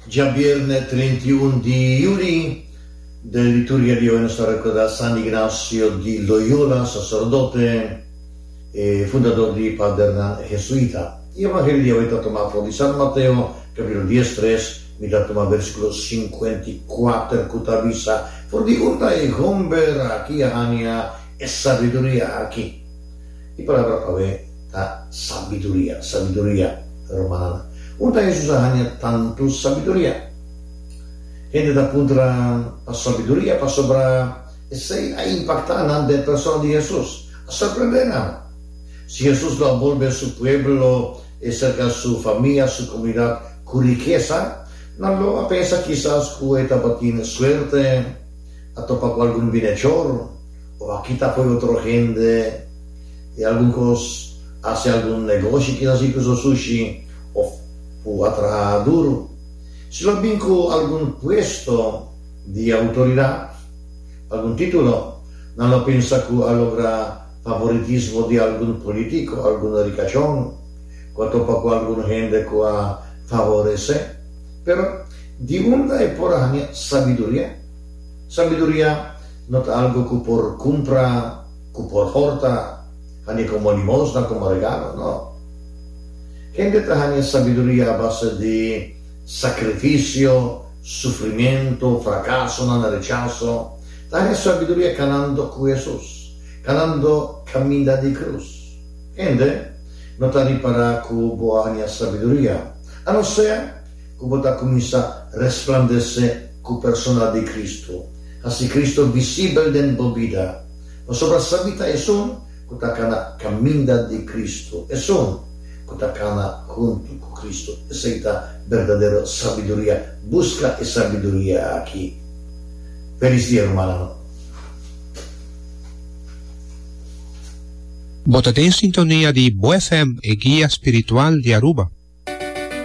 Djabièrnè treinti i un di Juli, den liturgia di oe nos ta rekordá San Ignacio di Loyola, saserdote i fundador di Padernan Hesuita. E Evangelio di awe ta tuma for di San Mateo, kapitulo dies tres, mi ta tuma versikulo sinkuenta i kuater ku ta bisa, For di urta e homber aki a hania e sabiduria aki. E palabra pab'e ta sabiduria, sabiduria, hermananan. Hopi ta Hesus a haña tantu sabiduria. Hende ta puntra pa sabiduria pasobra esei a impactá nan den persona di Hesus, a sorprendé nan. Si Hesus lo a bolbe su pueblo e serka su famia, su komunidat ku rikesa, nan lo a pensa kisas ku e tabatin suerte a topa ku algun binechor, O a kita fo'i otro hende i algun kos, hasi algun negoshi ki nos inkluso sushi òf ku a traha duru. Si lo bin ku algun puesto di outoridat, algun titulo, nan lo pensa ku a logra favoritismo di algun politiko, algun rikashon ku a topa ku algun hende ku a favores'é. Pero di unda e por haña sabiduria? Sabiduria. No ta algu ku por kumpra, ku por horta, hani komo limonsnan komo regalo. No. Hende ta haña sabiduria a base di sakrifisio, sufrimentu, frakasonan, rechaso. Ta haña sabiduria kanando ku Hesus, kanando kaminda di krus. Hende no ta ripará ku bo a haña sabiduria, a no ser ku bo ta kuminsá resplandesé ku persona di Kristu, hasi Kristu visibel den bo bida. Pasobra sabí ta esun ku ta kana kaminda di Kristu, esun ku ta kana huntu ku Kristu. Esei ta berdadero sabiduria. Buska e sabiduria aki. Felis dia, rumannan. Bo ta den sintonia di Bo FM, e guia spiritual di Aruba.